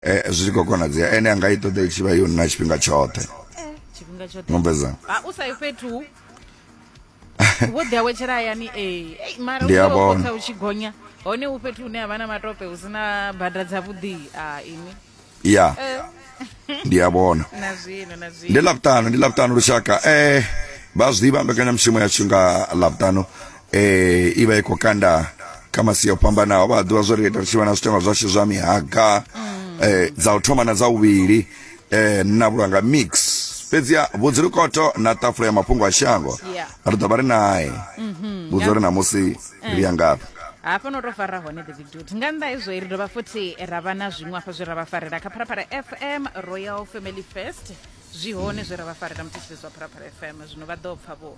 Eh, zwi tshi khou konadzea ene anga i ṱoḓa i tshi vha yo nna tshifhinga tshoṱhe tshifhinga tshoṱhe mumbeza ha u sa yi fhethu vho ḓi awetshela hayani ee Ei, mara Ndi a u vhona. khotha u tshi gonya hone u fhethu hune ha vha na matope hu si na bada dza vhuḓi a ini ya Eh, ndi a vhona na zwino na ndi zwino ḽavhutanu ndi ḽavhutanu lushaka eh vha zwi ḓivha mbekanyamushumo yashu nga ḽavhutanu eh ivha i khou kanda kha masia o fhambanaho vha ḓivha zwo ri ita ri tshi vha na zwitenwa zwashu zwa mihaga eh dza u thoma na dza uvhili eh na vhulanga mix fhedzi vhudzilukoto na ṱafula ya mafhungo a shango Yeah. ri ḓo vha ri nae vhudza uri namusi ri ya ngafhi hafha no to fara hone the big dude nga nnḓa hezwo ri dovha futhi ra vha na zwiṅwe hafha zwe ra vha farela kha pharapara fm royal family fest zwi hone zwe ra vha farela muthetshelesi wa pharapara fm zwino vha ḓo pfa vho